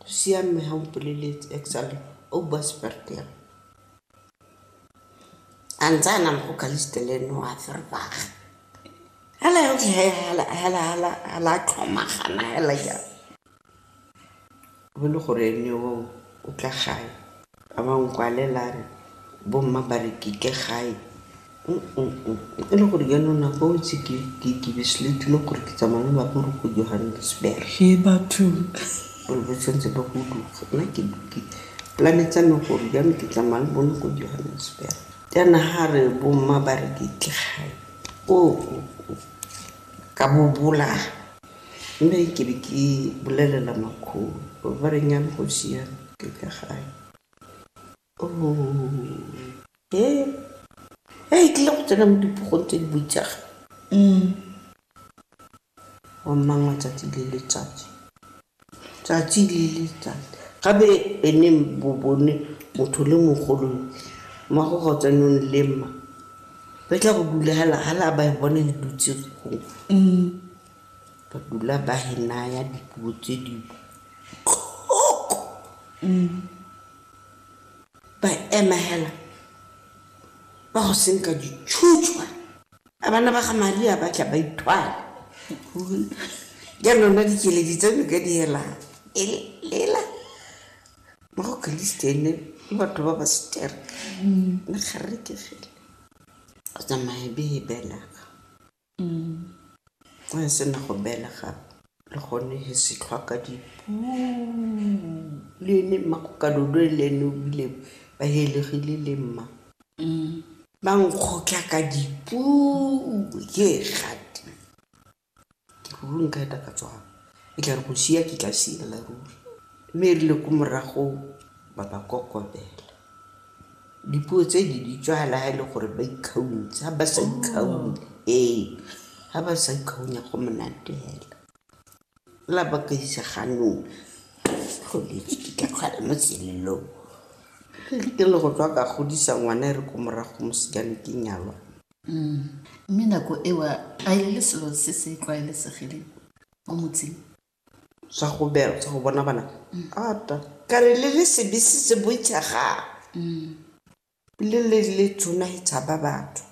Siame ha o mpoleletse actually o bua Seferika. A ntse a na le go Caliste le ene wa Verbaag. Hela ya ntse hela hela hela hela tlhomagana hela ya. Go le gore ene o o tla gae. A ba nkwalela a re, Bomma ba re ke ke gae. E le gore jaanong nako eo itse ke be se le ithula gore ke tsamaya le lapa re go Johannesburg. He batho. Gore ba tshwanetse ba go duga. Nna ke dipolane tsa me gore jaanong ke tsamaya le bone ko Johannesburg. Jaana ga re bomma ba re ke ke gae, ka bobola. Mme ke be ke bolelela makgolo ba re nnyane go siame ke ka gae e e tlile go tsena mo dipogong tse di boitsaga wa mmangwa tsatsi le letsatsi tsatsi le letsatsi gabe ene bo bone motho le mogolo mma go go tsenong le mma ba tla go dula hala ba e bone le dutse gongwe Ba dula ba he naya dipuo tse di botlhoko. Ba ema hela ba go senka ditšhutšwa. A bana ba ga Maria ba tla ba ithwala. Jaanong nna dikeledi tsa me ka di helang. Elela mo go Keresete ene le batho ba ba setereka. Nna ga re ke fela go tsamaya be e belega. Go e sena go belega le gone he se tlhwaka di le ene mma go ka dodo le ene o bile ba helegile le mma ba nkgotlha ka dipu ke gati ke ruri nka eta ka tswang e tla re go sia ke tla siela ruri mme e rile ko morago ba ba kokobela. Dipuo tse di di tswala ha e le gore ba ikgaunts ha ba sa ikgaunye ee ha ba sa ikgaunya go monate hela la ba ka isa ganong tlholetse ke ka kgwala mo selelong re ke le go tswa ka godisa ngwana e re ko morago mosikane ke nyalwa mme nako ewa a e le selo se se tlwaelesegileng mo motseng sa go bela sa go bona bana ata ka re le le sebe se se boitshagang le le le tsona e tshaba batho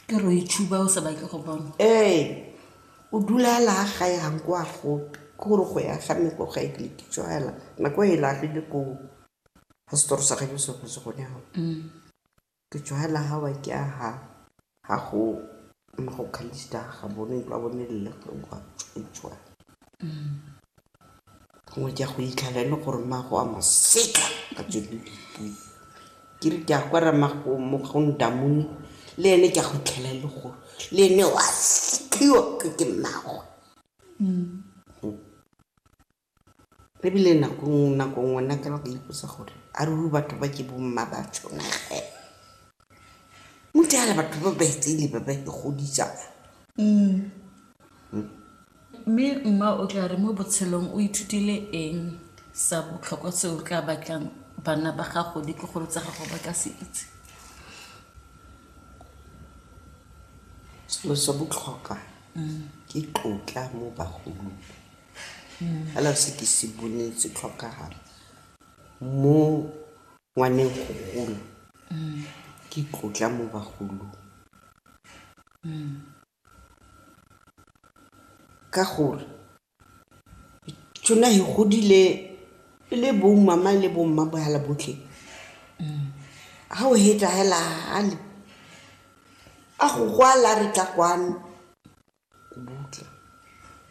ke re o itshuba o sa batle go bona ee o dula a laa ga yang kwa gope ke gore go ya ga me ko ga ekeletitso hela nako e laagile ko ga setoro sa gajo se go se gone gago Ke tšhogela ga wa ke aga. Ga go mo go khalista ga bone ba bone le go wa tswa. Gongwe ke a go itlhala le gore ma go a maseka ka tsone. Ke re ke a kwa ra ma go mo go ndamone le ene ke a go itlhala le gore le ene wa sekiwa ke mago. Ebile nako nngwe nako nngwe nna ke ba ka ipotsa gore a ruri batho ba ke bo mma ba tshwana ge. Mothala batho ba ba itseng le ba ba ke godisa. Mme mma o tla re mo botshelong o ithutile eng sa botlhokwa se o tla batlang bana ba gago le tlogolo tsa gago ba ka se itse? Selo sa botlhokwa ke tlotla mo bagolong. fela se ke se boneng se tlhokagala mo ngwaneng go gola ke tlotla mo bagolong ka gore tsona he godile e le bomama le bomma bohala botlhe ga o hetla hela gale a go gwala re tla kwano Kubutle.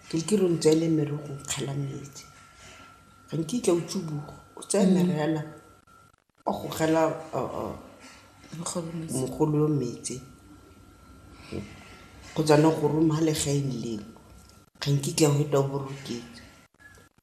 Ke re ke re o ntseele merogo o nkgela metsi. Ga nkitla o tsuboga, o tsaya mere fela o go kgela mogolo yo metsi kgotsa ne go roma ga le ga nkitla o feta o boroketswe.